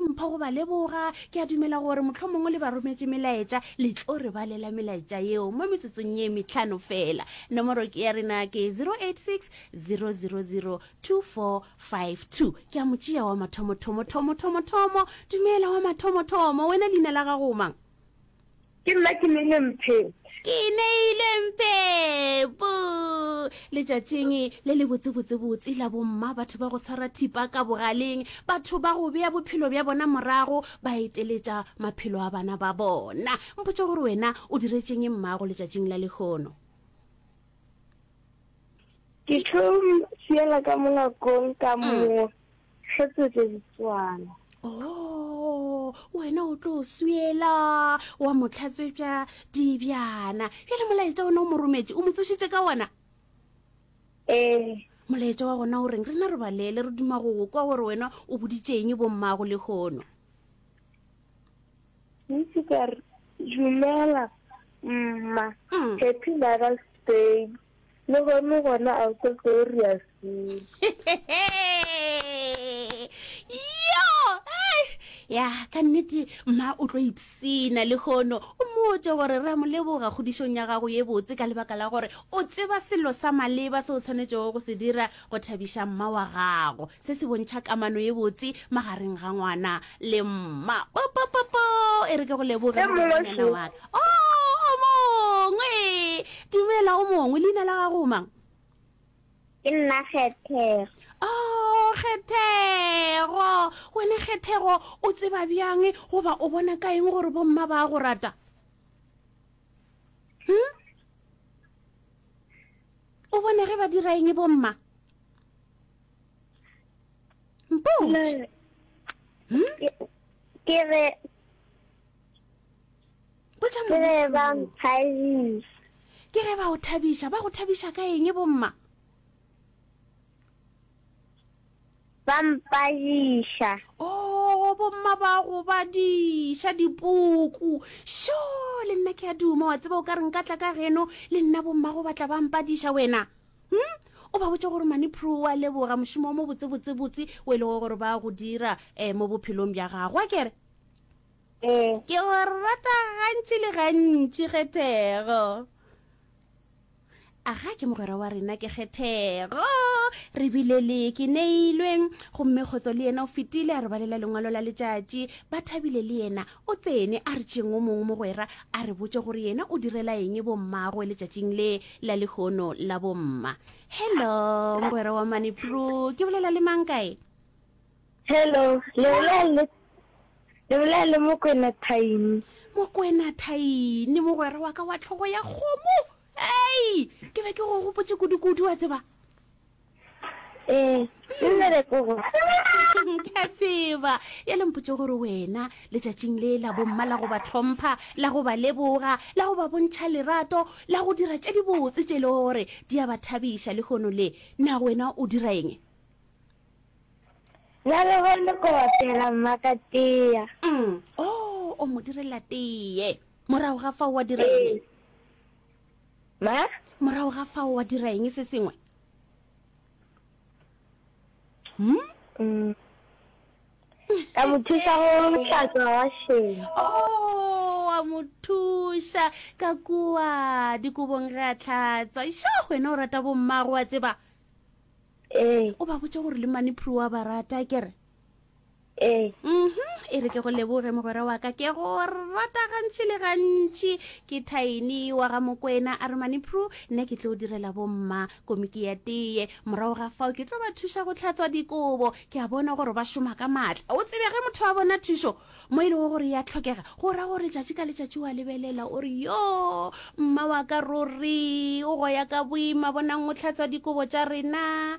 mpho go ba leboga. Ke a dumela gore mohlomongwe le ba rometše melaetša, le tlo re balela melaetša yeo mo metsotsong ye metlhano fela. Nomoro ke ya rena ke 086 000 2452. Ke a mo tšea wa mathomothomo, thomothomo, thomo. Dumela wa mathomothomo, wena leina la gago o mang? Ke nna ke neile mpheng. Ke neile mpheng. Bo. Letšatšing le le botsebotsebotse la bomma, batho ba go tshwara thipa ka bogaleng, batho ba go bea bophelo bja bona morago, ba eteletša maphelo a bana ba bona. Mpotše gore wena o diretšeng mmago letšatšing la lehono. Ke tlo mo siela ka mo ngakong ka mm. mo Re tswetše ditswana. Oh, wena o tlo swela wa motlhatswe bja dibjana bjale molaetša ona o mo rometše o mo tsošitše ka ona ee molaetša wa gona o reng rena re balele re duma go go kwa gore wena o boditšeng bommago le kgono ntse ka re dumela mma mm. happy mother's day Le gone gona a ko ko re a yo ya ka nnete mma o tlo ipsena le kgono o mmotse gore re a mo leboga kgodišong ya gago ye botse ka lebaka la gore o tseba selo sa maleba se o tshwanetšego go se dira go thabiša mma wa gago Se se bontšha kamano ye botse magareng ga ngwana le mma. Popopopo! E re ke go leboge Ge mongwe moranyana se- wa ka. O, o mongwe! Dumela, o mongwe. Leina la gago o mang? Ke nna Kgethego. O, Kgethego! Wena Kgethego, o tseba bjang goba o bona ka eng gore bomma ba a go rata? Hm? O bona ge ba dira eng bomma? mpotše hmm? ke re botša ke re ba nthabisa ke ge ba o thabiša ba go thabiša ka eng bomma ba mpadiša o oh, bomma ba go badiša dipuku sho le nna ke a duma wa tseba o ka re nka tla ka geno le nna bomma go batla ba mpadiša wena hmm? o ba botse gore mane pro wa leboga mošomo wa mo botsebotsebotse o e lego gore ba go dira um mo bophelong bja gago a kere eh. ke go rata gantši le gantši kgethego a ga ke mogwera wa rena ke kgethego re bile le ke neilwe gomme kgotso le yena o fetile a re balela lengwalo la letšatši ba thabile le yena O tsene a re tšeng o mongwe mogwera a re botše gore yena o direla eng bo mmagwe letšatšing le la lehono la bomma. Hello, mogwera wa mane Pru, ke bolela le mang kae? Hello, le bolela le le bolela le mokwena thaini mokwena thaini mogwera wa ka wa tlhogo ya kgomo ei ke be ke go gopotse kudu-kudu wa tseba ee mmerekong ke a tseba ya le mpotse gore wena letšatšing le la bomma la go ba tlhompha la go ba leboga la go ba bontšha lerato la go dira tše dibotse tše e le gore di a ba thabiša le kgono le na wena o dira eng na le gone ko bapela mmaka tea mm. o oh, o mo direla tee morago ga fa wa dira eng ee. Ma? Morago ga fao wa dira eng se sengwe? Hmm? Mm. Ka mo thusa go hlatswa washeng. Oh, wa mo thuša ka kua dikobong ge a tlhatswa. Sho, wena o rata bommago wa tseba. Ee. O ba botse gore le mane phru wa ba rata kere. Ee. Uhum, e re ke go leboge mogwera wa ka, ke go rata gantši le gantši. Ke Tiny wa ga Mokwena Arumani Pru, nna ke tlo direla bomma komiki ya teye. Morago ga fao ke tlo ba thuša go tlhatswa dikobo. Ke a bona gore ba šoma ka maatla. O tsebe ge motho a bona thušo mo e lego gore ya tlhokega, go ra gore tšatši ka letšatši wa lebelela o re yo mma wa ka ruri o goya ka boima bonang o tlhatswa dikobo tša rena.